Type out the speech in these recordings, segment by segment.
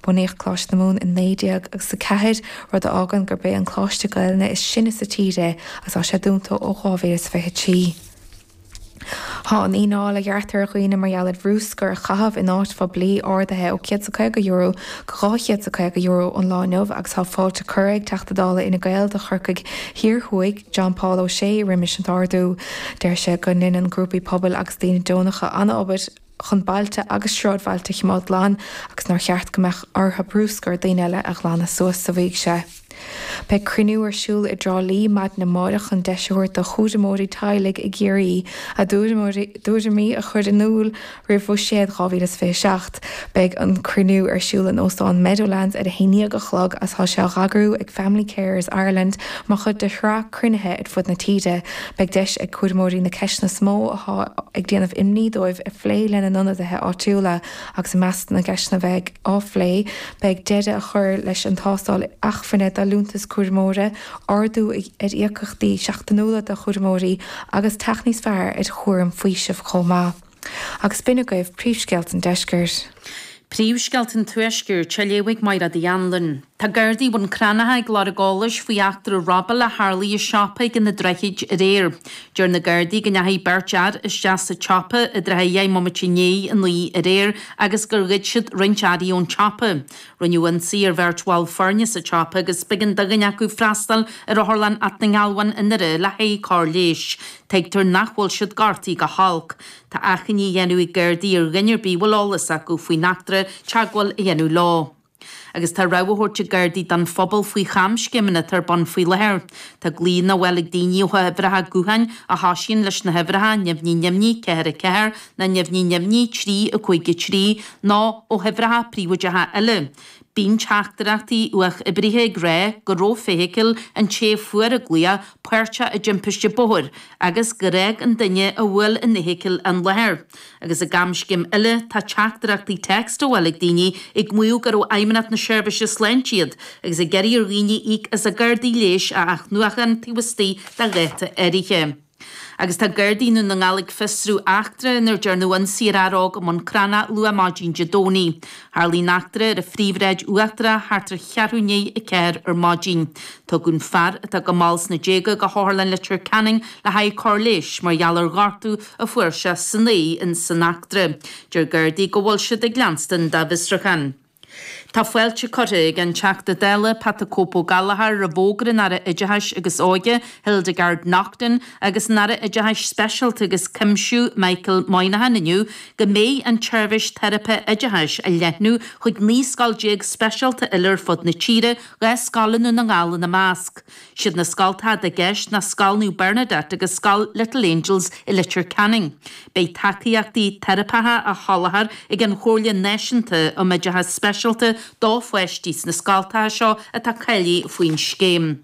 Bunaíodh Coláiste na Mumhan i naoi déag agus a ceathair, rud a fhágann gurb é an coláiste Gaelainne is sine sa tír é agus tá sé dúnta ó 2023. Tá an fhíneáil a ghearrtar ar dhaoine mar gheall ar bhrúscar a chaitheamh in áit phoiblí ardaithe ó €150 go €250 ón lá inniu agus tá fáilte curtha ag Teachta Dála Fhine Gael do Chorcaigh Thiar Thuaidh, John Paul O'Shea roimis an ardú. Deir sé go ndéanann grúpaí pobail agus daoine deonacha an-obair. chun bailte agus sráidbhailte a chimeád glan agus nár cheart go mbeadh ortha brúscar daoine eile a ghlanadh suas, a mhaígh sé. Beidh cruinniú ar siúl i dTrá Lí maidin amáireach chun deis a thabhairt do chúramóirí teaghlaigh i gCiarraí a dtuairimí a chur in iúl roimh Bhuiséad 2027. Beidh an cruinniú ar siúl in Óstán Meadowlands ar a haon déag a chlog agus tá sé á eagrú ag Family Carers Ireland mar chuid de shraith cruinnithe ar fud na tíre. Beidh deis ag cúramóirí na ceisteanna is mó atá ag déanamh imní dóibh a phlé lena n-ionadaithe áitiúla agus i measc na gceisteanna a bheidh á phlé beidh deireadh a chur leis an tástáil acmhainne do liúntas cúramóra, ardú ar íocaíochtaí seachtainiúla do chúramóirí agus teacht níos fearr ar chúram faoisimh chomh maith. Agus b'in agaibh príomhscéalta an deiscirt. Príomhscéalta an tuaiscirt, a léifidh Máiread Uí Anluain. Tá Gardaí Bhun Cranncha ag iarraidh eolais faoi eachtra robála a tharlaigh i siopa ag Na Droichid aréir. Deir na Gardaí go ndeachaigh beirt fhear isteach sa tsiopa i dtrátha a dheich mbomaite i ndiaidh a naoi aréir agus gur ghoid siad roinnt earraí ón tsiopa. Rinneadh ionsaí ar bheirt bhall foirne sa tsiopa agus b'éigean do dhuine acu freastal ar Otharlann Alt na nGealbhan i nDoire le haghaidh cóir leighis. Tuigtear nach bhfuil siad gortaithe go holc. Tá achainí á dhéanamh ag Gardaí ar dhuine ar bith a bhfuil eolas acu faoin eachtra teagmháil a dhéanamh leo. Agus tá rabhadh á thabhairt ag Gardaí don phobal faoi chamscéimeanna atá ar bun faoi láthair. Tá glaonna á bhfáil ag daoine ó uimhreacha gutháin a thosaíonn leis na huimhreacha nimhní nimhní ceathair a ceathair ná nimhní nimhní trí a cúig a trí nó ó uimhreacha príobháideacha eile. Bíonn teachtaireachtaí uathoibrithe ag rá go raibh feithicil an té a fuair an glaoch páirteach i dtimpiste bóthair agus gur fhág an duine a bhí ag tiomáint na feithicle an láthair. Agus i gcamscéim eile tá teachtaireachtaí téacs á bhfáil ag daoine ag maíomh gurbh ó Fheidhmeannacht na Seirbhíse Sláinte iad agus ag iarraidh ar dhaoine íoc as a gcártaí leighis a athnuachan taobh istigh de dháta áirithe. Agus tá Gardaí Dhún na nGall ag fiosrú eachtra ina ndearnadh ionsaí ar fhear óg i mBun Cranncha luath maidin Dé Domhnaigh. Tharlaigh an eachtra ar an Phríomhshráid Uachtarach thart ar cheathrú i ndiaidh a ceathair ar maidin. Tugadh an fear, atá go mall sna déaga, go hOtharlann Leitir Ceanainn le haghaidh cóir leighis mar gheall ar ghortú a fuair sé san aghaidh insan eachtra. Deir Gardaí go bhfuil siad ag leanstan dá bhfiosruchán. Tá fáilte curtha ag an Teachta Dála Pat 'The Cope' Ó Gallchóir roimh fhógra an Aire Oideachais agus Óige, Hildegarde Naughton, agus an Aire Oideachais Speisialta agus Cuimsiú, Michael Moynihan, inniu go mbeidh an tseirbhís teiripe oideachais á leathnú chuig 19 scoil speisialta eile ar fud na tíre, dhá scoil i nDún na nGall ina measc. Siad na scoltacha atá i gceist ná Scoil Naomh Bernadette agus Scoil Little Angels i Leitir Ceanainn. Beidh tacaíochtaí teiripeacha á sholáthar ag an Chomhairle Náisiúnta um Oideachas Speisialta do pháistí sna scoltacha seo atá cáilithe faoin scéim.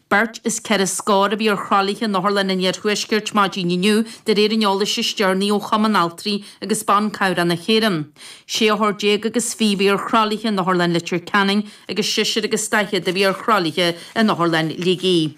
Beirt is ceithre scór a bhí ar thralaithe in otharlanna an Iarthuaiscirt maidin inniu de réir an eolais is deireanaí ó Chumann Altraí agus Ban Cabhrach na hÉireann. Sé othar déag agus fiche a bhí ar thralaithe in Otharlann Leitir Ceanainn, agus seisear agus daichead a bhí ar thralaithe in Otharlann Shligigh.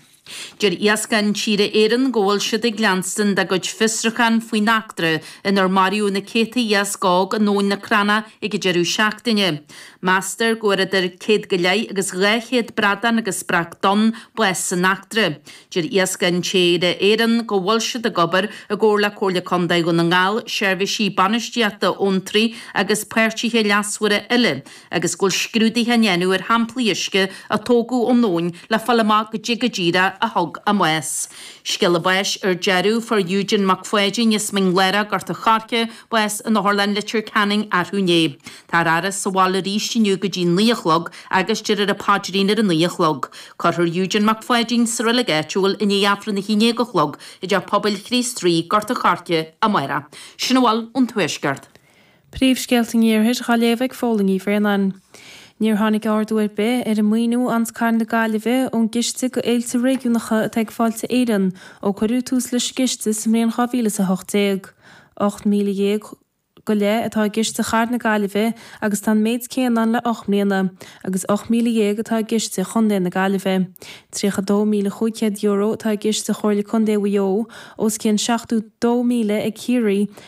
Deir Iascach Intíre Éireann go bhfuil siad ag leanstan dá gcuid fiosrúchán faoin eachtra inar maraíodh na céadta iasc óg in Abhainn na Cranncha ag an deireadh seachtaine. Meastar go bhfuair idir céad go leith agus dhá chéad bradán agus breac donn bás san eachtra. Deir Iascach Intíre Éireann go bhfuil siad ag obair i gcomhar le Comhairle Contae Dhún na nGall, seirbhísí bainistíochta abhantraí agus páirtithe leasmhara eile, agus go bhfuil scrúduithe á ndéanamh ar shamplaí uisce a tógadh ón abhainn le fáil amach caidé go díreach a thug a mbás. Scéala báis ar deireadh, fuair Eugene Mac Pháidín as Mín Lárach, Gort an Choirce, bás in Otharlann Leitir Ceanainn arú inné. Tá an fhaire sa bhaile arís inniu go dtí naoi a chlog agus déarfar an paidrín ar a naoi a chlog. Cuirfear Eugene Mac Pháidín sa reilig áitiúil i ndiaidh Aifreann a haon déag a chlog i dTeach Pobail Chríost Rí, Gort an Choirce, amáireach. Sin a bhfuil ón Tuaisceart. Príomhscéalta an Iarthair dhá léamh ag Fódhla Ní Bhraonáin. Níor tháinig ardú ar bith ar an maoiniú a fhaigheanns cathair na Gaillimhe ón gciste do Fhéilte Réigiúnacha atá ag Fáilte Éireann ó cuireadh tús leis an gciste sa mbliain 2018. 18,000 go leith atá i gciste chathair na Gaillimhe agus tá an méid céanna ann le ocht mbliana agus 18,000 atá i gciste chontae na Gaillimhe. €32,500 atá i gciste Chomhairle Contae Mhaigh Eo, os cionn 72,000 ag Ciarraí,